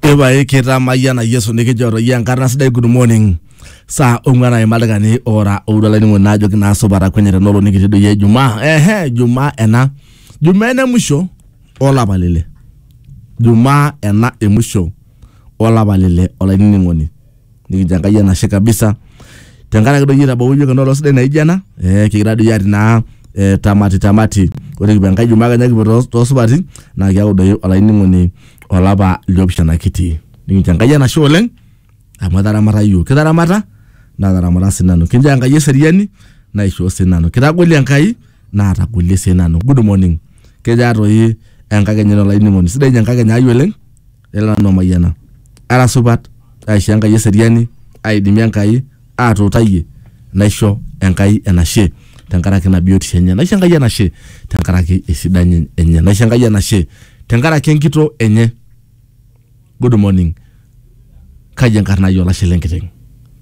Epae kitamayiana Yesu nikijo toi enkarna sidai good morning saa ong'uan aima ildaikani ora oudo olainining'oni naajoki naa supa takwenia tena olong nikitii doi Ijumaa ehe Ijumaa ena Jumaa ena emusho olapa lile Jumaa ena emusho olapa lile olainining'oni nikincho enkai enashe kabisa tenkaraki doi itabawua iyiook enoolong sidai naijo ena eh, kikira doi atii naa eh, tamati tamati ore kipuo enkai jumaa kenya kipuo too- toosupati naa kiaku doi olainining'oni olapa liopishana kiti nikincho enkai enashe oleng amu etaramata iyiook kitaramata nataramata sinanu kinchoo enkai eseriani naishoo sinanu kitagolie enkai naatagolie sinanu good morning kejaa toi enkakenya ino olainining'oni sidai ninye enkakenya ai oleng lelo nanu amayiana ara supat aisho enkai eseriani aidimi enkai atuutayie naisho enkai enashe tenkaraki ina biotisho enye naisho enkai enashe tenkaraki esidani enye naisho enkai enashe tenkaraki enkito enye good morning kaji enkarna ai olashe lenkiteng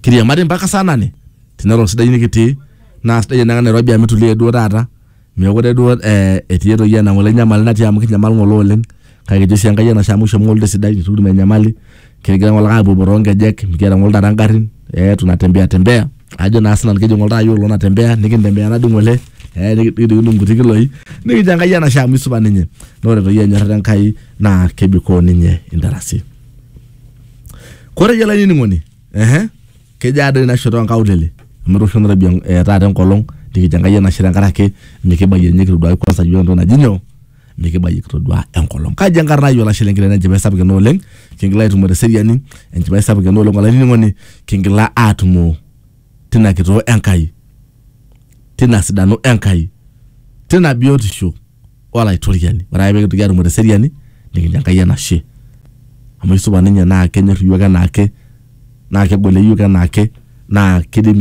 kiriamari mpaka saa nane tenelo sidai nikitii naa sidai enaa nairobi amu itulie duo taata Meekure duo eh, etii etoki ena ng'ole nyamali natii amu kinyamal ng'ole oleng kake kijo sii Enkai enashe amu kishoo ng'ole esidai nikitum enyamali kigira ng'ole ake apuopuo toonkejek mikiata ng'ole taata ingarrin eh, tunatembea tembea ajo naa sinanu kijo ng'ole taata iyiok iloo natembea nikintembea naa dii ng'ole eh, niki- nikidung'udung inkuti kiloi nikijo Enkai enashe amu isupat ninye naa ore doi enyorrata Enkai naa kebikoo ninye intarasi. Kore iyie olainining'oni Ehe. Kejo ade ina shoto onkaulele amu etoosho nairobi en- eh, taata enkolong nikijo Enkai enashe tenkaraki mikibayie ninye kitoduaki kwanza yiok entoki naji nyoo mikibayie kitodua enkolong. Kaji enkarna ai olashe lenkerai naa enchipai sapuk ena oleng kingila aitumo teseriani enchipai sapuk ena oleng olainining'oni kingila aatumo tina kitoo Enkai. tina sidano Enkai, tina biotisho Olaitoriani. Ore ake pekintoki atumo teseriani, nikincho Enkai enashe. Amu aisupat ninye na kenyor iyiook enaake, na kegol iyiok enaake, na kidim